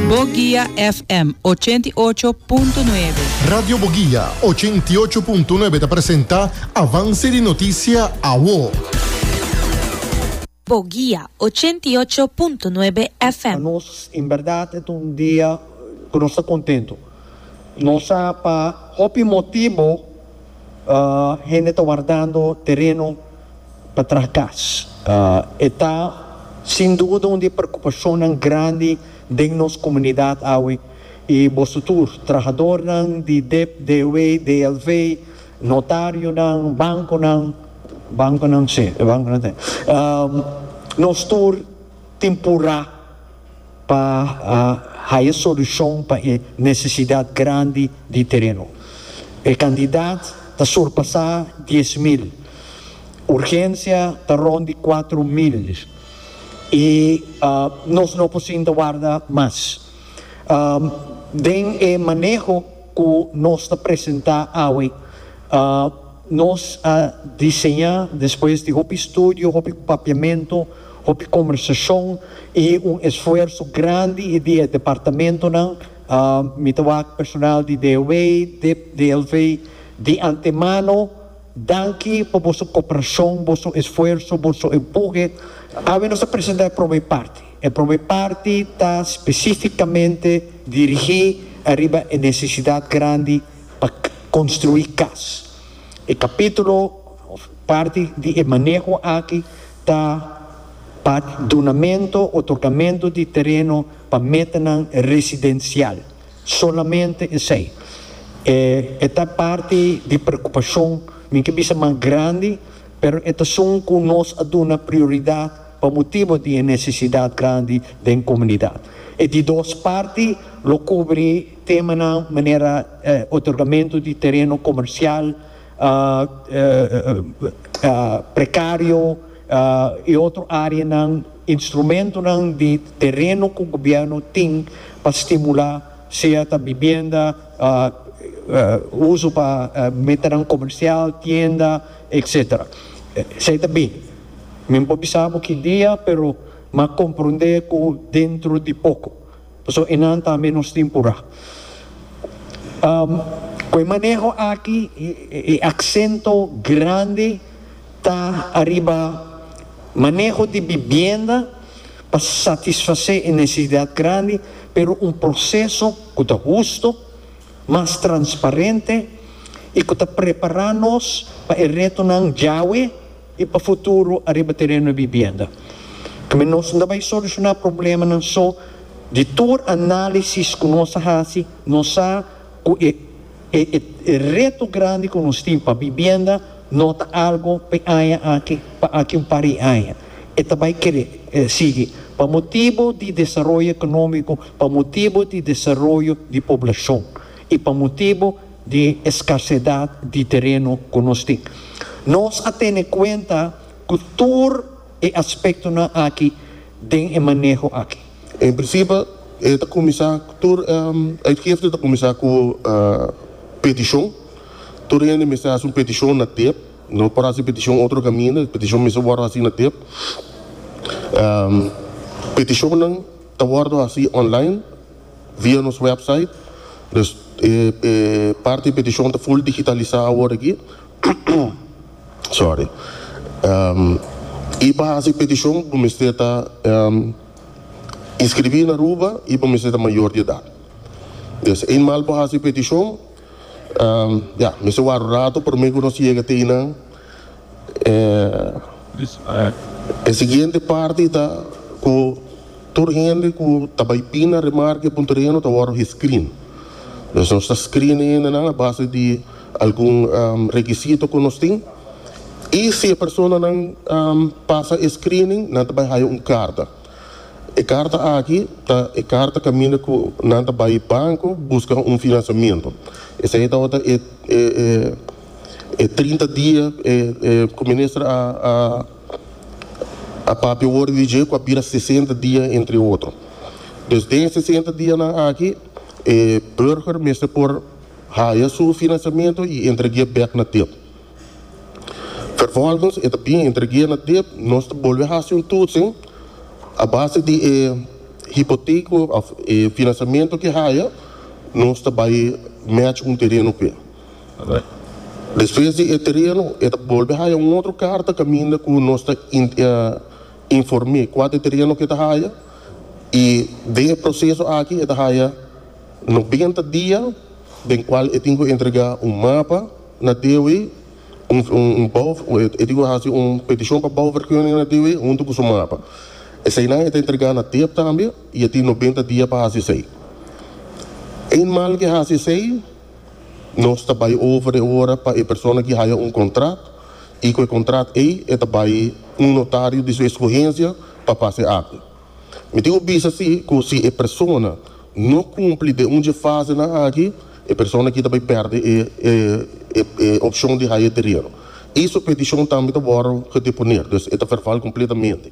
Boguia FM ochenta i ocho punto nuebe. Radio Boguia ochenta i ocho punto nuebe ta presenta Avance di Noticia Awo. Boguia ochenta i ocho punto nuebe Pa FM. nos en berdad e ta un dia cu nos ta contento. Nos sa pa hopi motibo hende ta wardando tereno. pa traha kas. E ta sin duda un di e preokupashonnan grandi den nos komunidat awe i boso tur, trahadornan di dep, DW, DLV, notarionan, bankonan, bankonan si, e bankonan ta nos tur tin por ra pa haya solucion pa e necesidad grandi di tereno. E cantidad ta surpasa dies mil, urgencia ta rond di cuatro mil y nos no por sinta warda mas. Den e maneho cu nos ta presenta awe. Nos a diseñá despues di hopi studio, hopi papiamentu, hopi kombersashon i un esfuerso grandi di e departamentunan, mi ta wak personal di DOW, dip, DLV, di antemano danki pa boso koperashon, boso esfuerso, boso empuhe. Awe nos ta presentá e prome parti. E prome parti ta spesífikamente dirigí ariba e nesesidat grandi. pa construi cas. E capitulo of parti di e maneho aki ta pa dunamento, otorgamento, di tereno pa metanan residencial, solamente esey. E e ta parti di preocupacion, mi ke bisa mas grandi, pero e t'asun cu nos a duna prioridad pa motibo di e necesidad grandi den comunidad. E di dos parti lo cubri. Temanan manera otorgamentu di tereno komersial prekario i otro areanan, instrumentunan di tereno ku gobièrnu tin pa stimulá sea ta bibienda, uso pa metanan komersial, tienda, etc. Esei ta bin. Mi no por bisa bo ki dia, pero m'a komprondé ku dentro di poko Pasobra enan tambe nos tin por a. Ku e maneho aki e aksento grandi ta ariba maneho di bibienda pa satisfasé e nesesidat grandi, pero un proseso ku ta husto, mas transparente i ku ta prepará nos pa e retonan djawe i pa futuro ariba tereno di bibienda. Tambe nos no ta bai solushoná problemanan so. Di tur análisis ku nos a hasi, nos sa ku e e reto grandi ku nos tin pa bibienda no ta algu pa e aña aki, pa aki un par di aña. E ta bai kere sigui pa motibu di desaroyo ekonómiko, pa motibu di desaroyo di poblashon i pa motibu di escasedad di tereno cu nos tin. Nos a tene cuenta cu tur e aspectonan aki den e maneho aki. En principio e ta cuminsa, tur uitgifte ta cuminsa cu peticion. Tur hende mester haci un peticion na tep. No por haci peticion otro caminda, e peticion mester wordo haci na tep. Peticionnan ta wordo haci online. Via nos website, dus e parti petishon ta full digitalisá awor aki, sorry, i pa hasi petishon bo mester ta inskribí na Aruba i bo mester ta mayor di edat. Des e mal bo hasi petishon. Ya, mi sa wak rato pa mi conoci e gatinan. E siguiente parti ta cu tur hende cu ta bay pina remarca di e punto di heno ta wordo he screen. Pues nos ta screen e hendenan a base di algun requisito cu nos tin. Y si e personanan pasa e screening nan ta bay haya un carta. E karta aki ta e karta kaminda ku nan ta bai banko buska un finansiamentu. Esei tabata e e trinta dia ku minister a a papia wor di dje ku a bira sesenta dia entre otro. Dus den e sesenta dianan aki e burger mester por haya su finansiamentu i entregia bèk na tempu. Vervolgens e ta bin entregu'é na dip, nos ta bolbe hasi un tutsin a base di e hipoteko of e finansiamentu ke haya, nos ta bai match un tereno p'e. Despues di e tereno e ta bolbe haya un otro karta kaminda ku nos ta inform'é kua te tereno ke ta haya i den e proseso aki e ta haya noventa dia den kual e tin ku entregá un mapa, Na DW, un bouw e tin ku hasi un petishon pa bouwvergunning na DW huntu ku su mapa. Eseinan e ta entregá na DEEP tambe i e tin nobenta dia pa hasi esei. Eenmaal ke hasi esei, nos ta bai over e ora pa e persona ki haya un kontraat i ku e kontraat ei e ta bai un notario di su eskohensia pa pasa e akta. Mi tin ku bisa si ku si e persona no kumpli den un dje fasenan aki e persona aki ta bai pèrdè e opshon di haya e tereno i su petishon tambe ta wòrdu gedeponé dus e ta verval kompletamente.